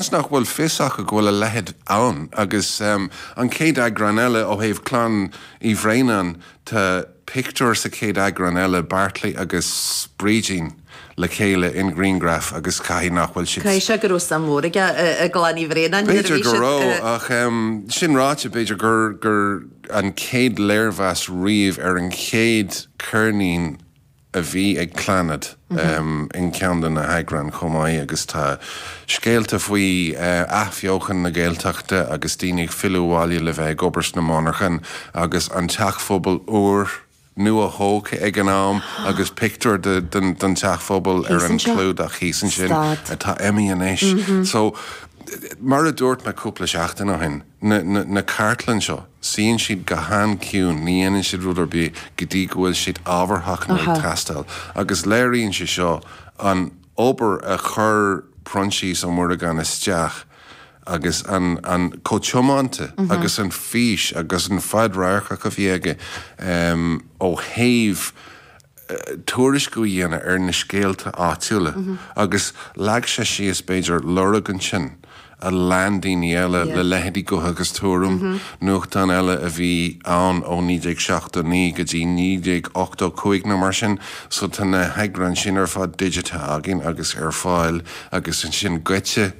Seans nach bhfuil fios acu go bhfuil a leithéid ann, agus an chéad eagrán eile, ó thaobh chlann Uí Bhraonáin, tá pictiúr sa chéad eagrán eile, Beairtlí agus Brídín le chéile i ngrianghraf, agus caithfidh nach bhfuil siad. B'fhéidir go raibh, ach sin ráite, b'fhéidir gur an chéad léirmheas riamh ar an chéad ceirnín, a bhí ag Clannad in ceann de na heagráin chomh maith agus tá scéalta faoi athbheochan na Gaeltachta agus daoine ag filleadh abhaile le bheith ag obair sna monarchain agus an teach phobail úr nuathógtha ag an am agus pictiúir den teach phobail ar an clúdach thíos ansin atá imithe anois. So, mar a dúirt mé cúpla seachtain ó shin. na cartlann seo, suíonn siad go han-chiúin, ní dhéanann siad rud ar bith go dtí go bhfuil siad ábharthach nó ag teastáil, agus léiríonn sé seo an obair a chuir Proinsias Ó Muireagáin isteach agus chomh tiomanta agus an fhís agus an fhadradharcacht a bhí aige ó thaobh tuairisc a dhéanamh ar na scéalta áitiúla agus leag sé síos, b'fhéidir, lorg ansin a lean daoine eile le leithéidí Gutha agus Tuairim, nuachtán eile a bhí ann ó 1979 go dtí 1985 nó mar sin. So tá na heagráin sin ar fad digitithe againn agus ar fáil agus ansin Goitse,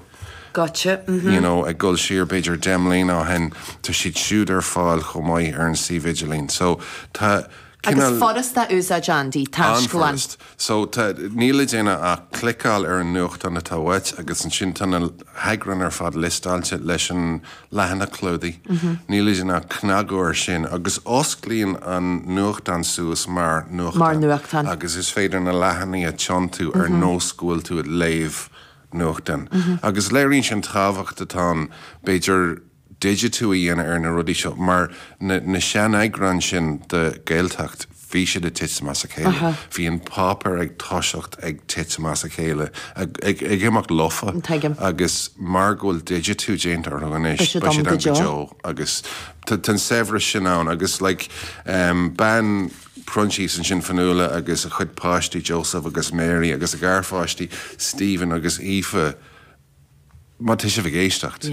you know, ag dul siar b'fhéidir deich mbliana ó shin, tá siad siúd ar fáil chomh maith ar an suíomh idirlín. So tá. Agus furast a úsáid, Andy, an taisclann. An-fhurast. So, tá, níl le déanamh ach cliceáil ar an nuachtán atá uait agus ansin tá na heagráin ar fad liostáilte leis an leathanach clúdaigh. Níl le déanamh ach cnagadh air sin agus osclaíonn an nuachtán suas mar nuachtán agus is féidir na leathanaigh a tiontú ar nós go bhfuil tú ag léamh nuachtán. Agus léiríonn sin an tábhacht atá ann, b'fhéidir, digitiú a dhéanamh ar na rudaí seo, mar na seaneagráin sin de Gaeltacht, bhí siad ag titim as a chéile, bhí an páipéar ag toiseacht ag titim as a chéile, ag imeacht lofa, agus mar go bhfuil digitiú déanta orthu anois, beidh siad ann go deo, agus tá an saibhreas sin ann, agus like, bean Proinsias ansin, Fionnghuala, agus a cuid páistí, Joseph agus Mary, agus a garpháistí, Stephen agus Aoife, má tá sibh ag éisteacht,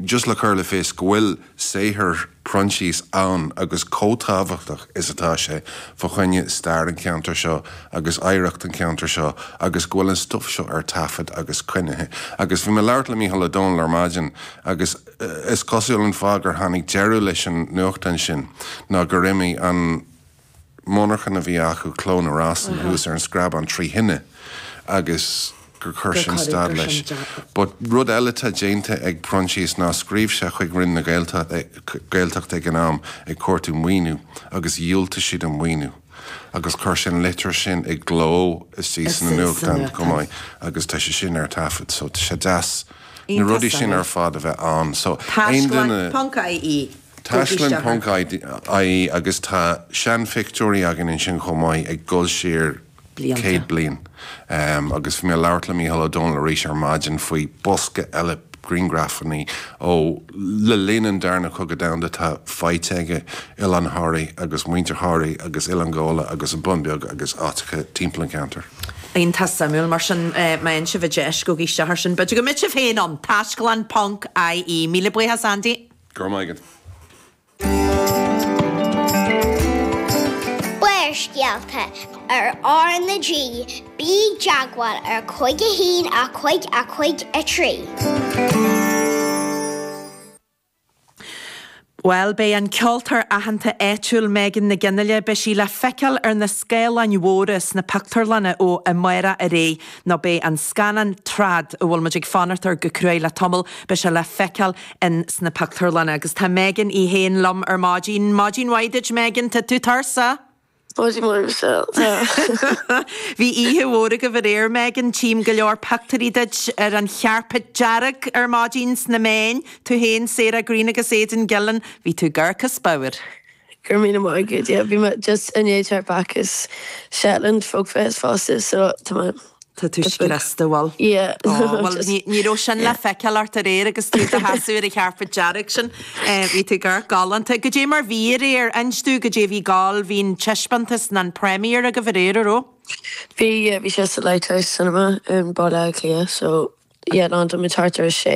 just le cur in iúl go bhfuil saothar Proinsias ann agus chomh tábhachtach is atá sé fá choinne stair an cheantair seo agus oidhreacht an cheantair seo agus go bhfuil an stuif seo ar taifead agus coinnithe. Agus bhí mé ag labhairt le Mícheál Ó Domhnaill ar maidin agus is cosúil an fáth gur tháinig deireadh leis an nuachtán sin ná gur imigh an monarchan a bhí acu, Cló na Rosann, thuas ar an Screabán trí thine agus gur chuir sin stad leis. But rud eile atá déanta ag Proinsias ná scríobh sé chuig Roinn na Gaeltachta ag an am ag cuartú maoiniú agus dhiúltaigh siad an maoiniú agus chuir sé an litir sin i gcló istigh sna nuachtáin chomh maith agus tá sé sin ar taifead so tá sé deas na rudaí sin ar fad a bheith ann so aon duine Taisclann ponc ie. Taisclann ponc ie agus tá seanphictiúirí againn ansin chomh maith ag dul siar céad bliain agus bhí mé ag labhairt le Micheál Ó Domhnaill arís ar maidin faoi bhosca eile grianghrafanna ó le linn an darna cogadh domhanda atá faighte aige, Oileán Thoraí agus muintir Thoraí agus Oileán Ghabhla agus an Bun Beag agus áiteacha timpeall an cheantair. Iontach suimiúil. Mar sin, má fhaigheann sibh an deis, gabh isteach air sin. B'fhéidir go mbeidh sibh féin ann! Taisclann ponc ie. Míle buíochas, Andy. Go raibh maith agat. Barrscéalta ar R na G, Bí i dteagmháil ar cúig a haon a cúig a cúig a trí. Bhuel, beidh an ceoltóir aitheanta áitiúil Megan Nic Fhionnghaile, beidh sí le feiceáil ar na scáileáin mhóra sna pictiúrlanna ó amárach ar aghaidh nó beidh an scannán Trad, a bhfuil muid ag fanacht air go cruaidh le tamall, beidh sé le feiceáil in sna pictiúrlanna agus tá Megan í féin liom ar maidin. Maidin mhaith duit Megan, tá tú tuirseach! Maidin mhaith muise, tá. Bhí oíche mhór agaibh aréir Megan, tchím go leor pictiúirí duit ar an chairpéad dearg ar maidin sna meáin, tú féin, Sarah Greene agus Aidan Gillen, bhí tú gorgeous go deo. Go raibh míle maith agat. Yeah, bhí mé just i ndiaidh teacht back as Shetland Folk Fest fosta so tá mé Tá tú just been, scriosta, bhfuil? yeah, Ó, bhuel just, ní, ní raibh sin le yeah. feiceáil ort aréir agus tú i do sheasamh ar an chairpéad dearg sin. Eh, bhí tú go galánta. Caidé mar bhí aréir, inis dúinn caidé a bhí ag gabháil, bhí an taispeántas nó an premiere agaibh aréir, a raibh? Bhí, yeah, bhí sé sa Lighthouse Cinema in Baile Átha Cliath so, yeah, landáil muid isteach ar a sé.